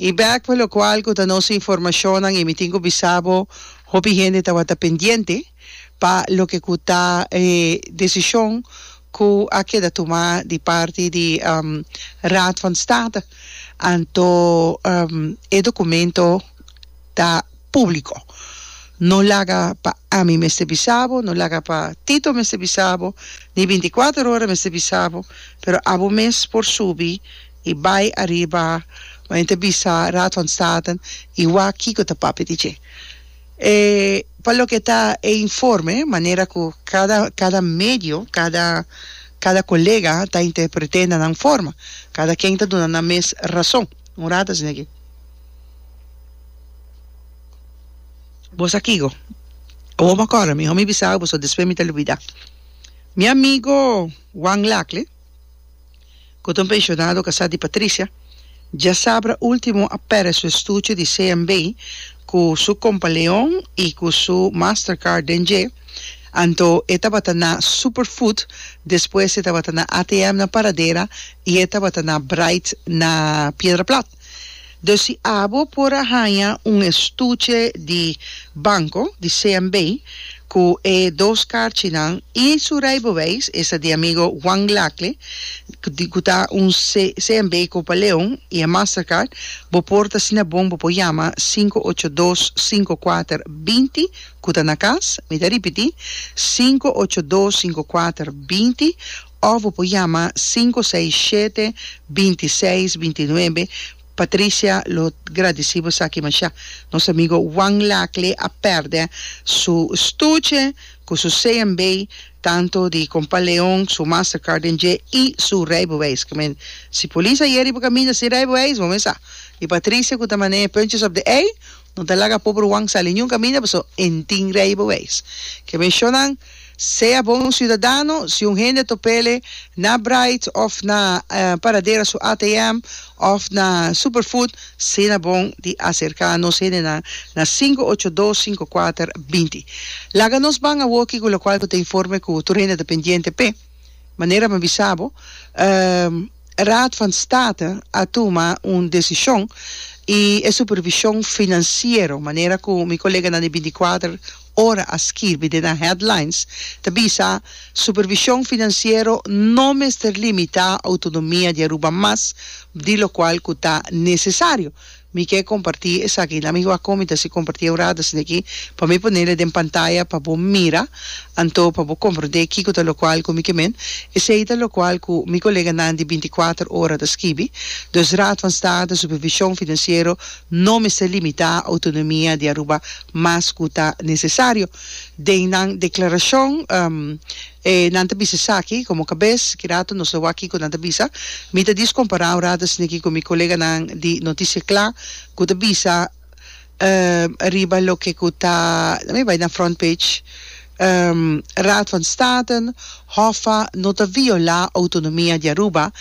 I bek pa lokual ku ta nos informashonnan i mi tin ku bisa bo hopi hende tabata pendiente pa loke ku ta e desishon ku a keda tumá di parti di Raad van State. Anto e dokumento. ta públiko. No laga pa ami mester bisa bo, no laga pa Tito mester bisa bo, ni binticuater ora mester bisa bo, pero abo mes por subi i bai ariba wak nan ta bisa Raad van Staten i wak kiko ta papia di dje. E pa loke ta e informe, manera ku kada kada medio, kada kada kolega ta interpret'é na nan forma, kada ken ta duna nan mes rason. Un rato asina ke. Bo sa kico? Awor bo a corda mi, ho mi bisa boso despues mi ta lubida. Mi amigo Juan Lacle, cu ta un pensionado casa di Patricia, diasabra ultimo a perde su estuche di CMB cu su compaleon y cu su Mastercard den dje, anto e tabata na Superfood, despues e tabata na ATM na Paradera y e tabata na Bright na Piedra Plat. Den si abo por a haña un estuche di banco di CMB cu e dos karchinan y su rijbewijs, esta di amigo Juan Glacle, di cu ta un CMB Copa Leon y e Mastercard, bo por ta asina bon, bo por yama sinku ocho dos sinku kuater binti cu ta na cas, mi ta ripiti, sinku ocho dos sinku kuater binti, Of bo por yama sinku seis shete binti seis binti nuebe Patricia lo gradisi bo esaki masha nos amigo Juan Lacle a perde su stuche cu su CMB tanto di compa Leon su Mastercard den dje y su rijbewijs ki men si polis ayeri bo caminda sin rijbewijs bo mester sa y Patricia cu ta mane punches op de ei No ta laga poberwan sa ninjun kaminda paso entin rei bo weis. Ke meshonnan sea bo un siudadano, si un hende topele na Bright of na Paradera su ATM of na Superfood sina bon di aserka nos hendenan na sinku ocho dos sinku kuater binti. Laga nos ban awoki ku lokual ku ta informe ku tur hende ta pendiente p'e. Manera mi bisa bo, e Raad van State a tuma un desishon i e supervishon finansiero, manera ku mi koleganan di bintikuater ora a skirbi den nan headlines, ta bisa, Supervishon finansiero no mester limitá outonomia di Aruba mas di lokual ku ta nesesario. Mi ke kompartí esaki. Lami wak komi ta si kompartí e worado asina aki, pa mi pone le den pantaya pa bo mira, anto pa bo komprondé kiko ta lokual ku mi ke men. Esei ta lokual ku mi koleganan di binti kuater ora ta skibi. Dus Raad van State, supervishon finansiero no mester limitá outonomia di Aruba mas ku ta nesesario. Den nan deklarashon. E nan ta bisa esaki, komo kabes, kirato nos lo wak kiko nan ta bisa. Mi ta diskompará un rato asina aki ku mi koleganan di Noticia Kla ku ta bisa riba loke ku ta, na mi bai na front page, Raad van State, Hoffa, no ta violá outonomia di Aruba,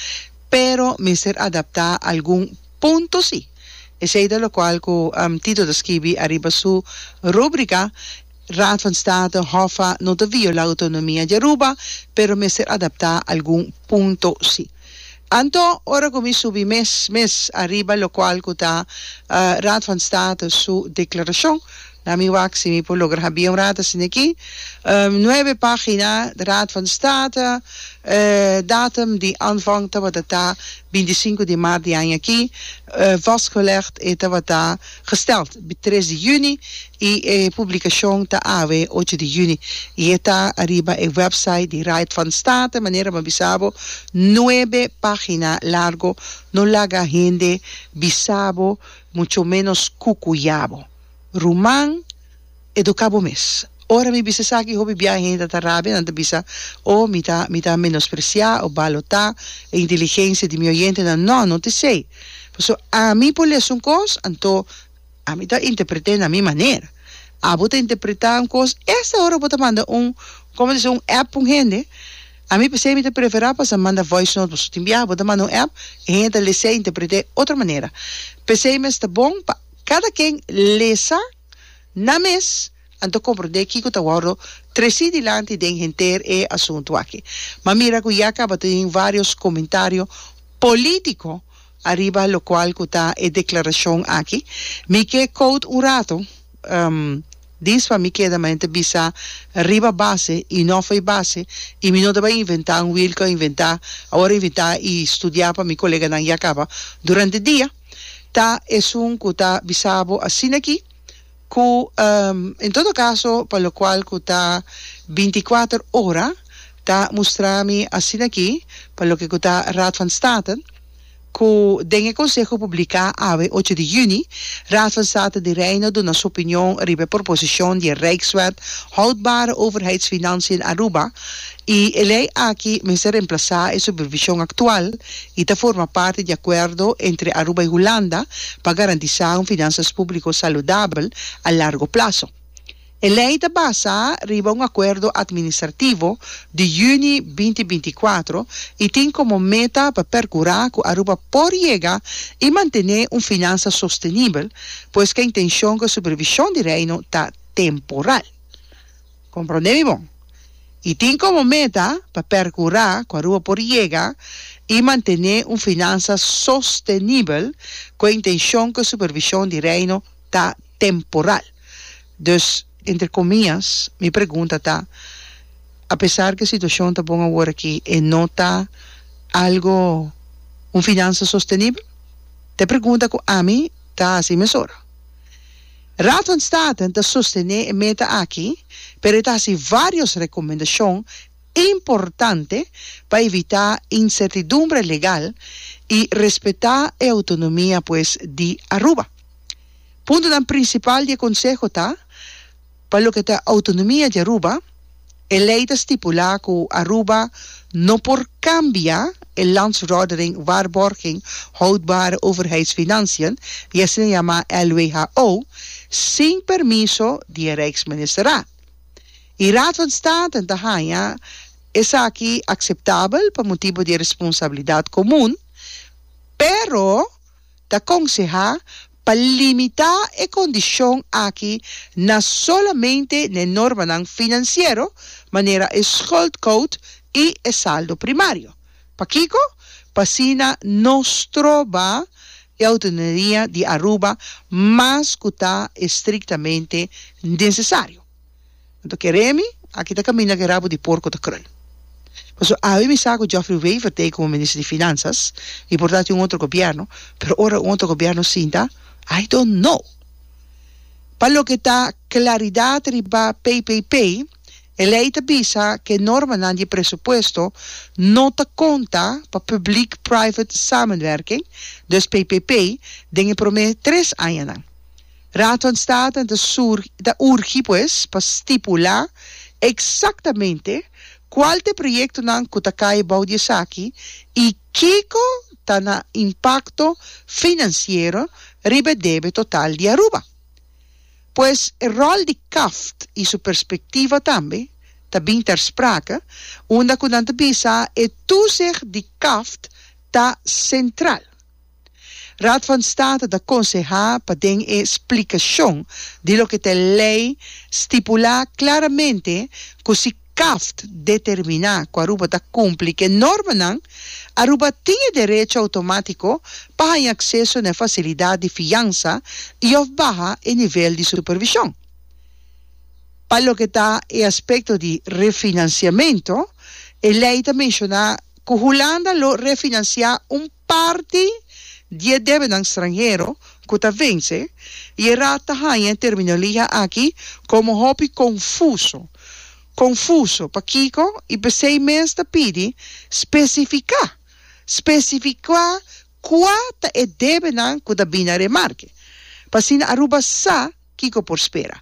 pero mester adaptá algun punto si. Esei ta lokual ku Tito ta skibi ariba su rúbrika. Raad van State, Hoffa, no ta viola autonomia di Aruba, pero mester adapta algun punto si. Anto, ora ku mi subi mes mes ariba lokual ku ta Raad van State su deklarashon, na mi wak si mi por logra habia un rata asina aki, nuebe pagina, Raad van State, datum di aanvang tabata ta bintisinko di maart di aña aki, vastgelegd e tabata. gesteld di tres di yüni i e publikashon ta awe ocho di yüni i e ta ariba e wèpsait di Raad van State. Manera bo a bisa bo, nuebe página largo no laga hende bisa bo, mucho ménos kukuya bo. Ruman. Educa bo mes. Ora mi bisa esaki hopi biaha hende a ta rabia, nan ta bisa, Oh, mi ta, mi ta menosprecia of balota e inteligencia di mi oyentenan. No, no t'esey. Pasobra ami por lesa un cos, anto ami ta interpretae na mi manera. Abo ta interpreta un cos, esta ora bo ta manda un, como ta si, un app pa un hende, ami p'esey mi ta prefera pasa manda voice note, pasobra tin biaha bo ta manda un app, e hende ta lesae e interpretae otro manera. P'esey mes ta bon pa cada ken lesa. Na mes, anto comprende kico ta wordo treci dilanti den henter e asunto aki. Ma mira cu ya caba ta tin varios comentario politico ariba locual cu ta e declaracion aki, mi ke cout un rato, dis pa mi keda mante bisa riba base y no fo'i base y mi no taba inventa un wiel cu a inventa, awor a inventa y studia pa mi coleganan ya caba durante dia. Ta esun cu ta bisa bo asina aki, cu en todo caso pa locual cu ta binticuater ora ta mustra mi asina aki pa loke cu ta Raad van State, cu den e conseho publica awe ocho di juni, Raad van State di Reino duna su opinion riba e proposicion di e Rijkswet Houdbare Overheidsfinanciën Aruba, I e lei aki mester remplasá e supervishon aktual i ta forma parti di akuerdo entre Aruba i Hulanda pa garantisá un finansas públiko saludabel a largo plaso. E lei ta basá riba un akuerdo atministrativo di yüni binti binti kuatro i tin komo meta pa perkurá ku Aruba por yega i mantené un finansa sostenibel, pues k'e intenshon ku e supervishon di Reino ta temporal. Comprende mi bon? Y tin como meta pa percura cu Aruba por yega y mantene un finansa sostenibel cu e intencion cu e supervision di Reino ta temporal. Dus, entre comias, mi pregunta ta, Apesar cu e situacion ta bon awor aki, e no ta algo, un finansa sostenibel? Ta e pregunta cu ami ta haci mesora. Raad van Staten ta sostené e meta aki, pero e ta hasi vários rekomendashon importante pa evitá insertidumbre legal i respetá e outonomia pues di Aruba. Puntonan prinsipal di e konseho ta pa loke ta outonomia di Aruba, E lei ta stipulá ku Aruba no por kambia e Landsverordening Waarborging Houdbare Overheidsfinanciën, di asina yamá LWHO, sin permiso di e Rijksministerraad. E Raad van Staten ta haña esaki akseptabel pa motibu di e responsabilidat komun, pero ta konsehá pa limitá e kondishon aki na solamente n'e normanan finansiero, manera e schuldquote i e saldo primario. Pakiko? Pa asina no stroba e Autonomia di Aruba mas ku ta estriktamente nesesario. Nan ta kere mi, aki ta kaminda ku e rabu di porko ta krul. Paso awe mi sa ku Geoffrey Wever ta ei komo minister di Finansas, no importa si un otro gobièrnu, pero ora un otro gobièrnu sinta, I don't know. Pa loke ta klaridat riba PPP, e lei ta bisa ku e normanan di e presupuesto no ta konta pa Publiek Private Samenwerking, dus PPP, den e promé tres añanan. Raadvanstaten ta surgi, ta urgi pues pa stipulá eksaktamente kual ta e proyektonan ku ta kai bou di esaki i kiko ta na impakto finansiero riba e debe total di Aruba. Pues e ròl di CAFT i su perspektiva tambe ta bin ter sprake unda ku nan ta bisa e tusig di CAFT ta sentral. Raad van State ta konsehá pa den e splikashon di loke ta e lei stipulá klaramente ku si CAFT determiná ku Aruba ta kumpli ku e normanan, Aruba tin e derecho outomátiko pa haña akseso na e fasilidat di fiansa i òf baha e nivel di supervishon. Pa loke ta e aspekto di refinansiamentu, e lei ta menshoná ku Hulanda lo refinansiá un. Parti di e debenan stranhero ku ta vense i e Raad ta haña e terminologia aki komo hopi konfuso. Konfuso pakiko i p'esei mes ta pidi spesifiká, spesifikuá kua ta e debenan ku ta bini na remarke pa asina Aruba sa, Kiko por spera?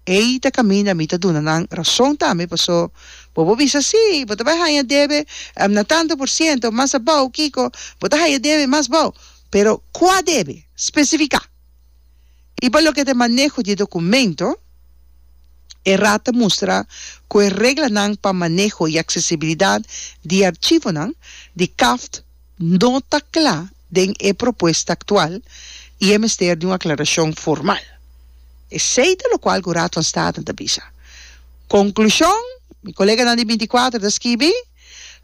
Ei ta kaminda mi ta duna nan rason tambe, paso bobo bisa, Sí, bo ta bai haña debe na tantu por siento mas abou, kiko bo ta haña debe mas bou. Pero kua debe? Spesifiká! I pa loke ta e maneho di e dokumento, e Raad ta mustra ku e reglanan pa maneho i aksesibilidat di e archivonan di CAFT no ta cla den e propuesta actual y e mester di un aclaracion formal. Esey ta locual cu Raad van Staten ta bisa. Conclusion, mi coleganan di binticuater ta skibi,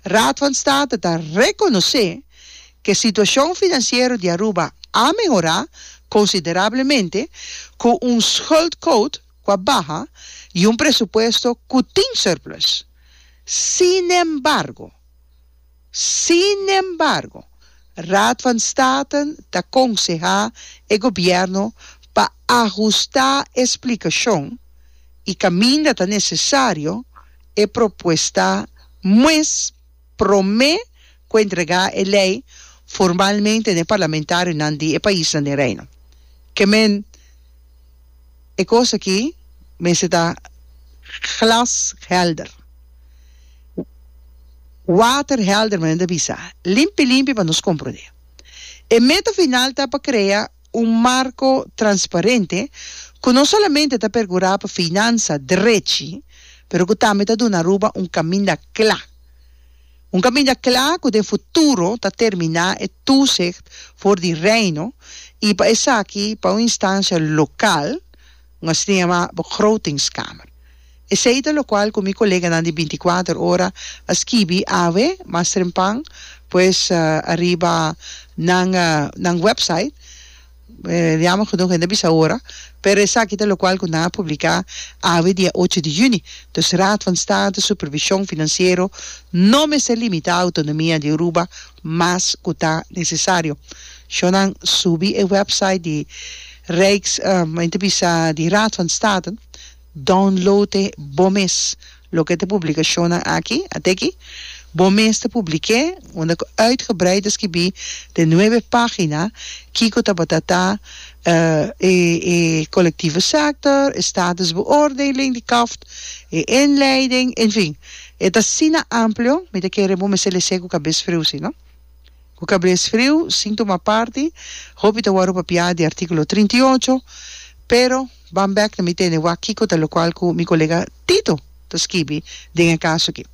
Raad van Staten ta reconoce cu e situacion financiero di Aruba a mehora considerablemente cu un schuldquot cu a baha y un presupuesto cu tin surplus. Sinembargo. Sinembargo, Raad van Staten ta konsehá e gobièrnu pa ahustá e splikashon i kaminda ta nesesario e propuesta mues promé ku entregá e lei formalmente na e parlamentarionan di e paisnan den Reino. Kement. E kos aki mester ta glashelder, waterhelder manera ta bisa, limpi limpi pa nos komprondé. E meta final ta pa krea un marko transparente ku no solamente ta pergurá pa finansa drechi pero ku tambe ta duna Aruba un kaminda kla. Un kaminda kla ku den futuro ta terminá e túsicht for di Reino i pa esaki pa un instansia lokal, un asina yamá Begrotingskamer. Esei ta lokual ku mi koleganan di bintiakuater ora a skibi awe mas trempan pues ariba nan nan wèpsait. Yama ku nos hende a bisa ora, pero esaki ta lokual ku nan a publiká awe dia ocho di yüni. Dus Raad van State supervishon finansiero no mester limitá outonomia di Aruba mas ku ta nesesario. Shon nan subi e wèpsait di Rijks, men ta bisa di Raad van State, Download'e bo mes loke ta publicacionnan aki, ateki. Bo mes ta public'e unda cu uitgebreid ta skibi den nuebe pagina kico tabata ta e e colectivo sector, e status beoordeling di kaft, e inleiding, enfin, e ta asina amplio, mi ta kere bo mester lese cu cabes freusi, no? Ku kabes friu, sin tuma parti, hopi ta wòrdu papiá di artíkulo trinta i ocho, pero ban bèk na mi tende wak kiko ta lokual ku mi kolega Tito ta skibi den e kaso akí.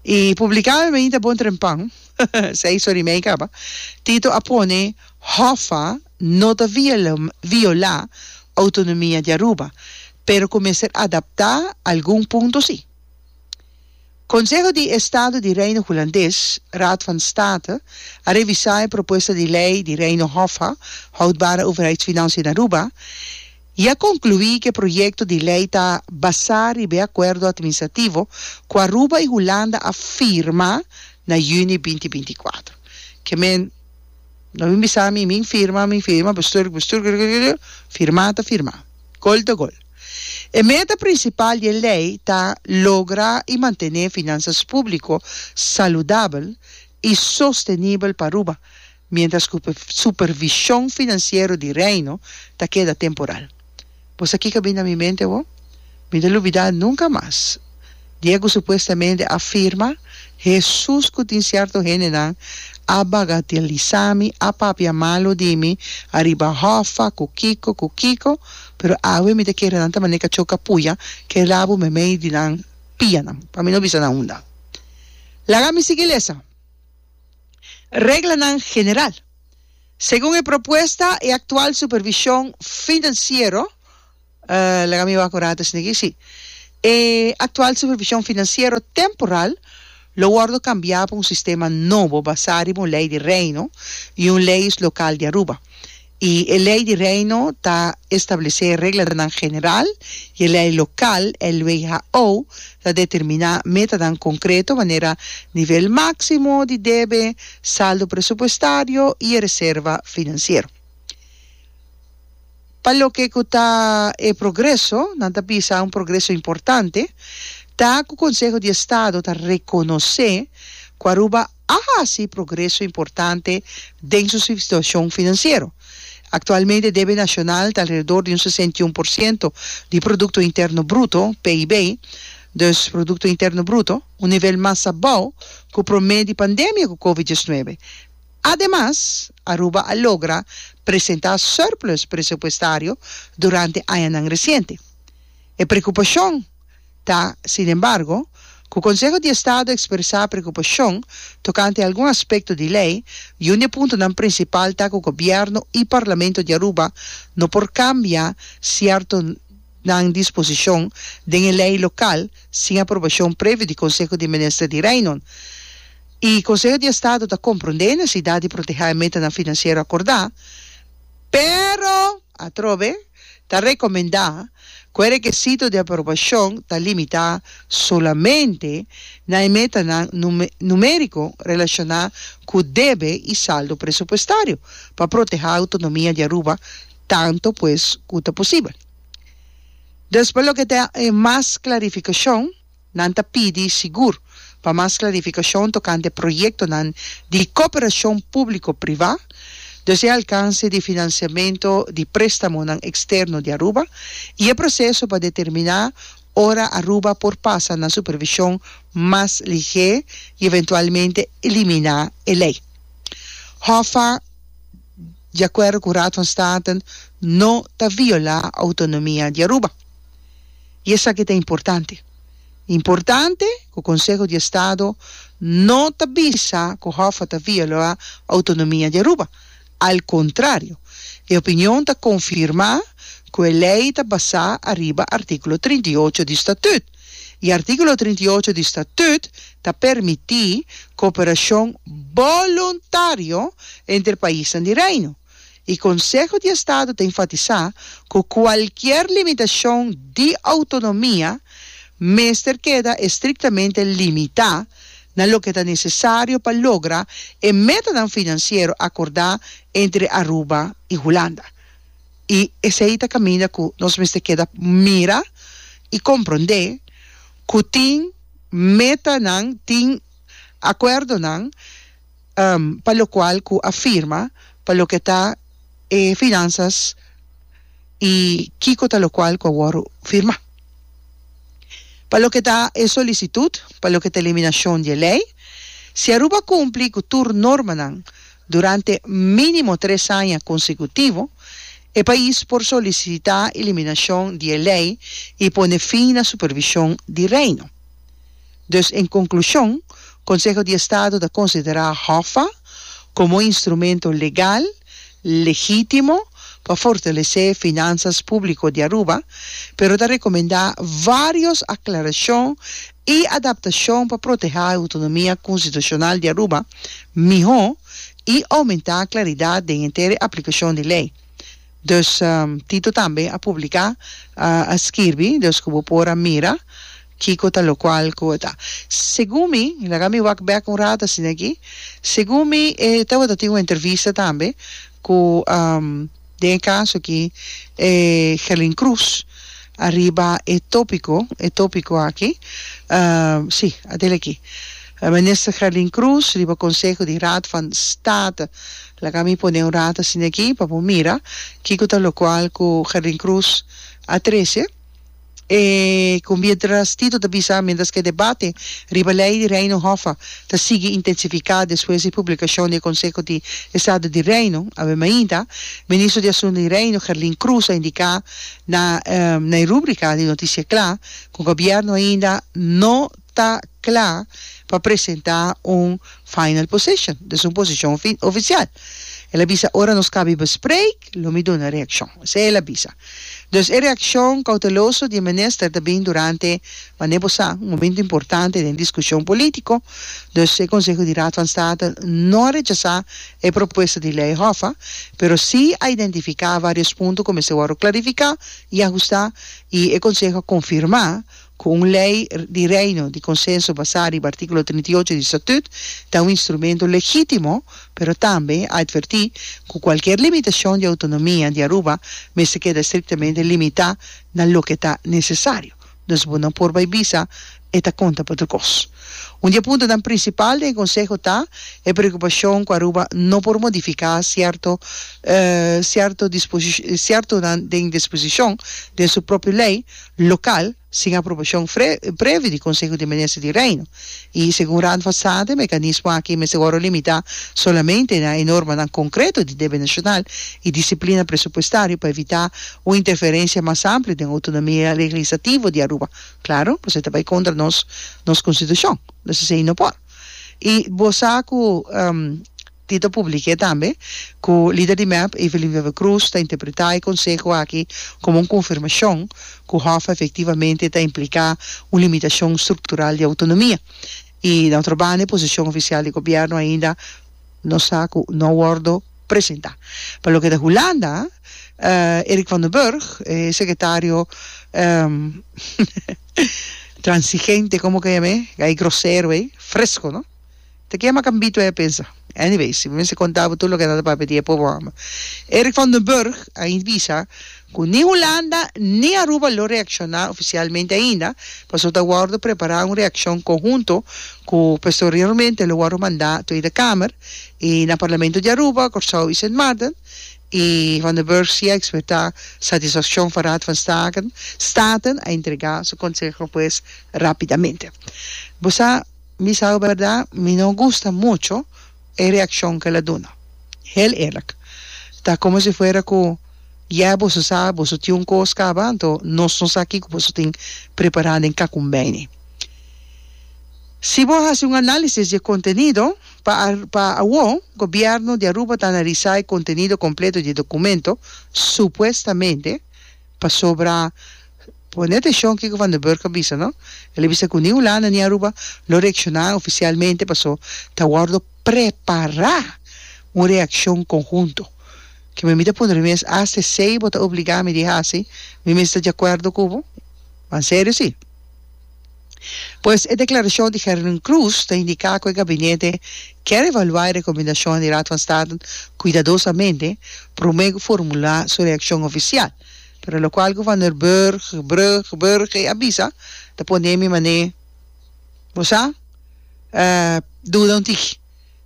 I publiká mi mainta bon trempan, esei so rimei kaba, Tito a pone Hoffa no ta violá outonomia di Aruba, pero ku mester adaptá algun punto sí. Konseho di Estado di Reino Hulandes, Raad van State, a revisá e propuesta di lei di Reino Hoffa, Houdbare Overheidsfinanciën Aruba, i a konkluí ku e proyekto di lei ta basá riba e akuerdo atministrativo ku Aruba i Hulanda a firma na yüni binti binti kuater. Ke men no bin bisa mi, min firma, mi firma, bestuur, bestuur, gul, gul, gul, gul, firmá ta firmá, gol ta gol. E meta prinsipal di e lei ta logra i mantené finansas públiko saludabel i sostenibel pa Aruba, miéntras ku supervishon finansiero di Reino ta keda temporal. Bo sa kiko a bini na mi mente awor? Mi no lo olbidá nunka mas! Diego supuestamente a firma, Hesus ku tin sierto hendenan a bagateliza mi, a papia malo di mi ariba hòffa, ku kiko, ku kiko, pero awe mi ta kere nan ta manera kachoka puya ke rabu meimei di nan pianan, pa mi no bisa nan unda. Laga mi sigui lesa. Reglanan general. Segun e propuesta, e aktual supervishon finansiero, Laga mi wak ora desnigi, si. E aktual supervishon finansiero temporal lo wòrdu kambiá pa un sistema nobo basá riba un lei di Reino i un leyes lokal di Aruba. I e lei di Reino ta establesé reglanan general i e lei lokal, LWHO, ta determiná metanan konkreto manera nivel máksimo di debe, saldo presupuestario i e reserva finansiero. Pa loke ku ta e progreso, nan ta bisa un progreso importante ta ku Konseho di Estado ta rekonosé ku Aruba a hasi progreso importante den su situashon finansiero. Aktualmente debe nashonal ta alrededor di un sesenta i un por siento di Produkto Interno Bruto, PIB, dus Produkto Interno Bruto, un nivel mas abou ku promé di pandemia ku Covid diesnuebe. Ademas, Aruba a logra presentá surplus presupuestario durante añanan resiente. E prekupashon ta, sin embargo, ku Konseho di Estado ekspresá prekupashon tokante algun aspekto di lei i un di e puntonan prinsipal ta ku Gobièrnu i Parlamento di Aruba no por kambia sierto nan disposishon den e lei lokal sin aprobashon previo di Konseho di Minister di Reinon i Conseho di Estado ta comprende e necesidad di protehá e metanan financiero acordá, pero, atrobe, ta recomendá cu e requesito di aprobacion ta limitá solamente na e metanan numérico relacioná cu debe i saldo presupuestario pa protehá autonomia di Aruba tanto pues cu ta posibel. Despues loke ta e mas clarificacion. Nan ta pidi sigur pa mas klarifikashon tokante proyektonan di koperashon públiko-privá, dus e alkanse di finansiamentu di préstamonan eksterno di Aruba i e proseso pa determiná ora Aruba por pasa na supervishon mas ligé i eventualmente eliminá e lei. HOFA, di akuerdo ku Raad van Staten, no ta violá outonomia di Aruba. I esaki ta importante. Importante ku Konseho di Estado no ta bisa ku Hoffa ta violá outonomia di Aruba. Al kontrario, e opinion ta konfirmá ku e lei ta basá ariba artíkulo trinta i ocho di Statüt. I artíkulo trinta i ocho di Statüt ta permití koperashon boluntario entre paisnan di Reino. y Conseho di Estado ta enfatisá cu cualkier limitacion di autonomia mester keda estrictamente limitá na loke ta necesario pa logra e metanan financiero acordá entre Aruba y Hulanda. Y esei ta caminda cu nos mester keda mira y comprendé cu tin metanan, tin acuerdonan, pa lokual ku a firma pa loke ta e finansas i kiko ta lokual ku a wòrdu firmá. Pa loke ta e solisitut pa loke ta eliminashon di e lei, si Aruba kumpli ku tur normanan durante mínimo tres aña konsekutivo, e pais por solisitá eliminashon di e lei i pone fin na supervishon di Reino. Dus en konklushon, Konseho di Estado ta konsiderá HOFA komo un instrumento legal, legítimo pa fortalesé finansas públiko di Aruba, pero ta rekomendá vários aklarashon i adaptashon pa protehá e outonomia konstitushonal di Aruba mihó i oumentá klaridat den henter e aplikashon di lei. Dus Tito tambe a publiká, a skirbi, dus ku bo por a mira kiko ta lokual ku e ta. Segun mi, laga mi wak bèk un rato asina aki, segun mi e tabata tin un entrevista tambe ku den e kaso aki e Herlin Cruz ariba e topiko, e topiko aki, si a del aki, Minister Herlin Cruz riba konseho di Raad van State. Laga mi pone un rato asina aki pa bo mira kiko ta locual cu Jardín Cruz a trece. E cumbieras Tito ta bisa mientras cu e debate riba ley di Reino Hoffa ta sigui intensifica despues di publicacion di e Conseho di Estado di Reino. Awe mainta, Ministro di Asunto di Reino, Jardín Cruz, a indica na e rubrica di Noticia Cla cu Gobierno ainda no. ta kla pa presentá un final position, des un posishon ofisial. El a bisa, Ora nos kabi bespreek, lo mi duna reakshon. Esei el a bisa. Dus e reakshon kouteloso di e minister ta bini durante, mane bo sa, un momentu importante den diskushon polítiko. Dus e konseho di Raad van State no a rechasá e propuesta di lei Hoffa, pero sí a identifiká vários punto ku mester wòrdu klarifiká i ahustá, i e konseho a konfirmá, Cu un ley di Reino di consenso basá riba artículo trinta i ocho di Estatut ta un instrumento legítimo, pero tambe a advertí cu cualkier limitacion di autonomia di Aruba mester keda estrictamente limitá na loke ta necesario. Dus bo no por bai bisa e ta conta pa otro cos. Un di e puntonan principal den e Conseho ta e preocupacion cu Aruba no por modificá cierto cierto disposici ciertonan den disposicion den su propio ley Local, sin aprobashon fre, previ di Konseho di Minister di Reino. I, segun Raad van State, mekanismo aki mester wòrdu limitá solamente na e normanan konkreto di debe nashonal i disiplina presupuestario pa evitá un interferensia mas ampli den outonomia leglisativo di Aruba. Klaru, pasobra e ta bai kontra nos nos konstitushon. Nos esei no por. I, bo sa ku. Tito publiqué tambe cu lider di mep, Evelyn Wever Croes, ta interpretá e conseho aki como un confirmacion cu Hoffa efectivamente ta implicá un limitacion structural di autonomia. Y na otro banda e posicion oficial di gobierno ainda no sa cu no a wordo presentá. Pa loke ta Hulanda, Erik van den Burg, e secretario transigente, como ke yam'é, gai grosero ei, fresco, no? Ta kema Cambito e pensa. Anyway, si bo mester conta bo tur loke ta papia di e pobo homber. Eric van den Burg a bisa cu ni Hulanda ni Aruba lo reacciona oficialmente ainda, pasobra ta wordo prepara un reaccion conhunto cu posteriormente lo wordo manda Tweede Kamer y na Parlamento di Aruba, Corsou y Sint Maarten y van den Burg si a expresa satisfaccion for Raad van Staten a entrega su conseho pues rapidamente. Bo sa. Mi sabi bèrdat mi no gusta mucho e reakshon ku el a duna. Hel eerlik. Ta komo si fuera ku, Yeh, boso sa boso tin un kos kaba, anto nos no sa kiko boso tin prepará den Kakumbeini. Si bo hasi un análisis di e kontenido, pa pa awó gobièrnu di Aruba ta analisá e kontenido kompleto di e dokumento, supuestamente, Pasobra, pone atenshon kiko Van den Burg a bisa, no? El a bisa ku ni Hulanda ni Aruba lo reakshoná ofisialmente paso ta wòrdu prepará un reakshon konhunto. Ke mi mi ta puntra mi mes, Asta esei bo ta obligá mi di hasi? Mi mester ta di akuerdo ku bo? Pan serio si. Pues e declaracion di Herwin Cruz ta indica cu e gabinete kier evalua e recomendacionan di Raad van State cuidadosamente prome cu formula su reaccion oficial, pero locual cu Van der Burg, Brug, Burge, a bisa ta pone mi mane bo sa duda un tigi.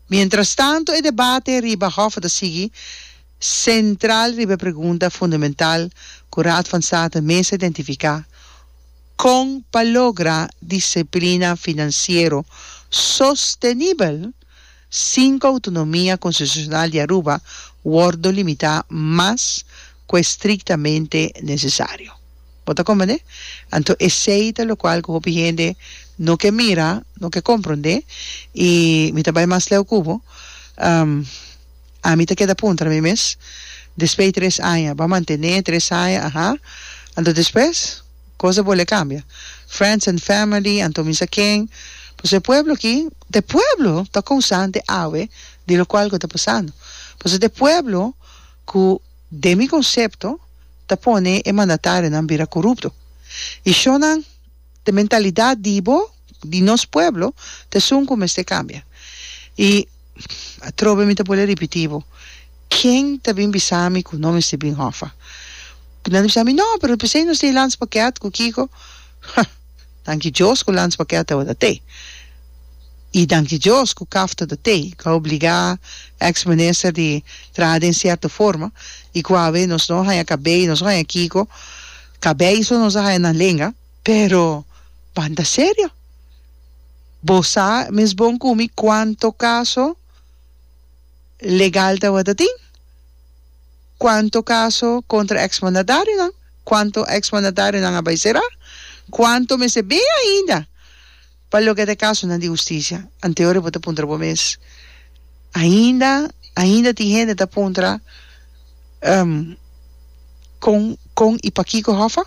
Mientras tanto e debate riba Hof ta sigui central riba e pregunta fundamental cu Raad van State mes a identifica, Con pa logra disciplina financiero sostenibel sin cu autonomia constitucional di Aruba wordo limita mas cu e strictamente necesario? Bo ta comprende? Anto esey ta locual cu hopi hende no ke mira, no ke compronde y mi ta bay mas leu cu bo, ami ta keda puntra na mi mes, despe tres aña, bo a mantene tres aña, aha, anto despues? Cosa bo le cambia? Friends and family, anto misa ken? Paso e pueblo aki, e pueblo ta cousante awe di locual cu ta pasando. Paso ta e pueblo cu, den mi concepto, ta pone e mandatarionan bira corupto. Y shonnan, ta mentalidad di bo. di nos pueblo ta esun cu mester cambia. Y atrobe mi ta bole ripiti bo, ken ta bin bisa mi cu no mester bin Hoffa? Cu nan ta bisa mi, no, pero p'esey nos tin Lance Paquet cu kico. Ha! Danki Dios cu Lance Paquet tabatin ta tey. Y danki Dios cu caf ta ta tey, cu a obliga ex minister di traha den cierto forma y cu awe nos no haña cabey, nos no haña kico, cabey so nos a haña nan lenga. Pero, banda serio, bo sa mes bon ku mi kuanto kaso legal tabata tin? Kuanto kaso kontra eksmandatarionan? Kuanto eksmandatarionan a bai será? Kuanto mester bin ainda? Pa loke ta e kasonan di hustisia, ante ora bo ta puntra bo mes, Ainda, ainda tin hende ta puntra, Um, kon, kon i pakiko Hòfa?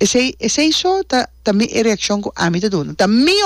Esei, esei so ta, ta mi e reakshon ku ami ta duna. Ta mi.